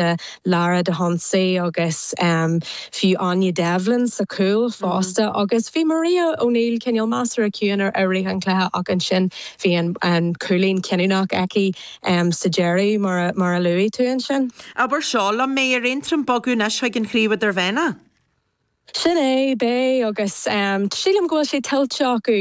Gaeltachta, Lara Dahunsi agus fiú Áine Devlin sa chúl fosta agus bhí Maria O'Neill cineál measartha ciúin i rith an chluiche ach ansin bhí an cúilín cinniúnach aici sa deireadh mar a luaigh tú ansin. Abair seo liom, mbeidh ar Aontroim bogadh anois chuig an Chraobh Idirmheánach? Sin é, beidh, agus sílim go bhfuil sé tuillte acu.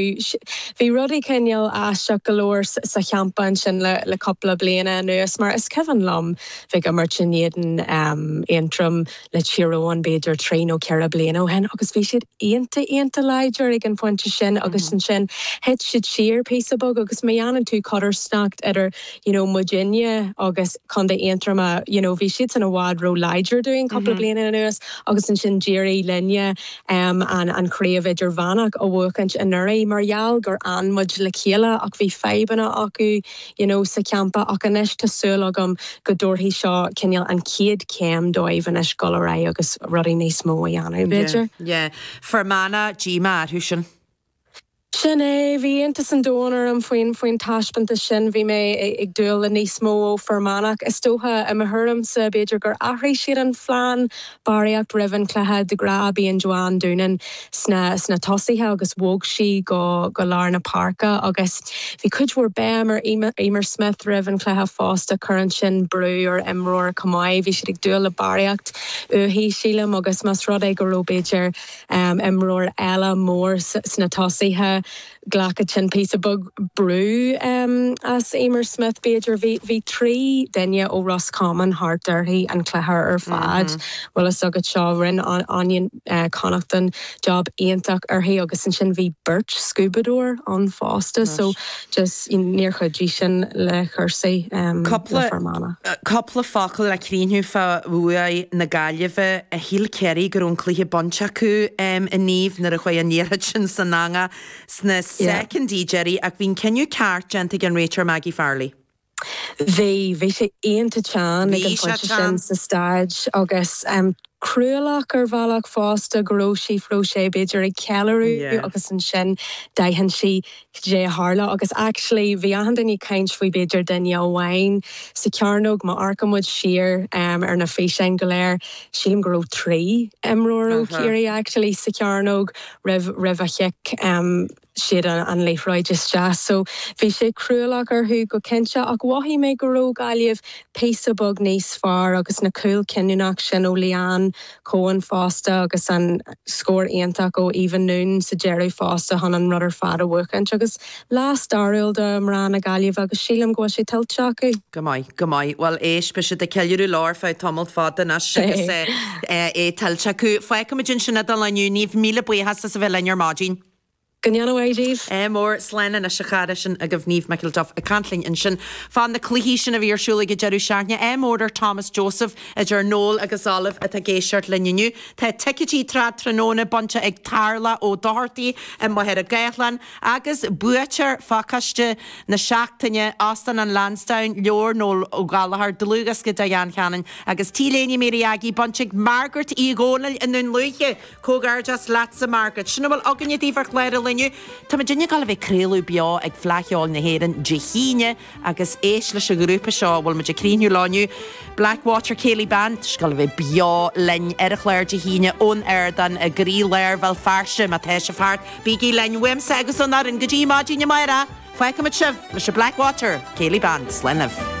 Bhí rudaí cineál aisteach go leor sa champa ansin le cupla bliana anuas, mar is cuimhin liom, bheith ag imirt in éadan Aontroim le Tír Eoghain b'fhéidir trí nó ceithre bliana ó shin agus bhí siad iontach, iontach láidir ag an phointe sin agus ansin thit siad siar píosa beag agus má dhéanann tú codarsnacht idir you know muidinne agus Contae Aontroma you know bhí siadsan i bhfad ró láidir dúinn cúpla bliana anuas agus ansin d'éirigh linne em an an Chraobh Idirmheánach a bhuachaint anuraidh mar gheall gur fhan muid le chéile ach bhí fadhbanna acu you know sa champa ach anois tá súil agam go dtabharfaidh seo cineál an chéad chéim dóibh anois dul ar aghaidh agus rudaí níos mó a dhéanamh b'fhéidir. Yeah yeah. Fear Manach díomá orthu sin. Sin é. Bhí iontas an domhain orm faoin, faoin taispeántas sin. Bhí mé ag dúil le níos mó ó Fir Manach. Is dócha, i mo thuairimse, b'fhéidir gur athraigh siad an phlean barraíocht roimh an cluiche. De ghnáth bíonn Joanne Doonan sna, sna tosaithe agus bhog sí go, go lár na páirce agus bhí cuid mhór béim ar Eimear, Eimear Smyth roimh an chluiche fosta. Cuireann sin brú ar imreoir chomh maith. Bhí siad ag dúil le barraíocht uaithi, sílim, agus más rud é go raibh b'fhéidir, imreoir eile mór sna tosaithe, ghlacfadh sin píosa beag brú as Eimear Smyth b'fhéidir, bhí trí duine ó Ros Comáin thart uirthi an cluiche ar fad, bhfuil fhios agat so, rinn Áine Connaughton job iontach uirthi agus ansin bhí beirt scuabadóir ann fosta so just you know níor chuidigh sin le cúrsaí um le Fermanagh. Cúpla focal le críochnú fá bhuaidh na Gaillimhe. Shíl Ciarraí go raibh an cluiche bainte acu inniu nuair a chuaidh an liathróid sin san eangach sna soicindí deiridh ach bhí an cinneadh ceart déanta ag an réiteoir Maggie Farrelly. Bhí, bhí sé iontach teann ag Bhí an sé phointe sin teann. sa staid agus cruálach ar bhealach fosta go raibh Síofra O'Shea b'fhéidir ag ceiliúradh Yeah. agus ansin d'aithin sí cad é a tharla agus actually bhí achan duine ag caint faoi b'fhéidir duine amháin sa chearnóg, má amharcann muid siar ar na físeáin go léir, sílim go raibh trí imreoir ó Uh-huh. Chiarraí actually sa chearnóg roimh, roimh an chic. siad an liathróid isteach. So, bhí sé cruálach orthu go cinnte ach mhothaigh mé go raibh Gaillimh píosa beag níos fearr agus na cúil cinniúnach sin ó Leanne Coen fosta agus an scór iontach ó Eva Noone sa deireadh fosta chun an rud ar fad a bhuachaint agus lá stairiúil do mná na Gaillimhe agus sílim go bhfuil sé tuillte acu. Go maith, go maith. Bhuel, éist, beidh siad ag ceiliúradh lá ar feadh tamalt fada anois agus é tuillte acu. Fágfaimid ansin é don lá inniu. Niamh, míle buíochas as a bheith linn ar maidin. Go ndéana a mhaith díobh. MR. Slán anois, a chara, sin agaibh Niamh McElduff ag caint linn ansin fá na cluichí sin a bhí ar siúl ag an deireadh seachtaine. MR. Ar Thomas Joseph, idir Noel agus Olive atá ag éisteacht linn inniu. Tá ticeití tráth tráthnóna bainte ag Tarla Ó Dochartaigh amuigh ar an Ghaeltacht Láir agus buaiteoir phacáiste na seachtaine, Óstán an Lansdowne, leabhar Noel Ó Gallchóir, dlúthdhiosca Diane Cannon agus T-léine Mary Aggie bainte ag Margaret Uí Dhomhnaill i nDún Lúiche. Comhghairdeas leatsa Margaret. Sin a bhfuil againne daoibh ar chlár an Luain. Tá muidinne ag dul a bheith ag craoladh beo ag Fleadh Cheoil na hÉireann Dé hAoine agus éist leis an ghrúpa seo a bhfuil muid ag críochnú leo inniu, Blackwater Céilí Band, tá siad ag dul a bheith beo linn ar an chlár Dé hAoine ón ardán i gcroílár Bhéal Feirste. Má tá sibh thart, bígí linn uaimse agus ón fhoireann. Go dtí maidin amárach, fágfaimid sibh leis an Blackwater Céilí Band, slán libh!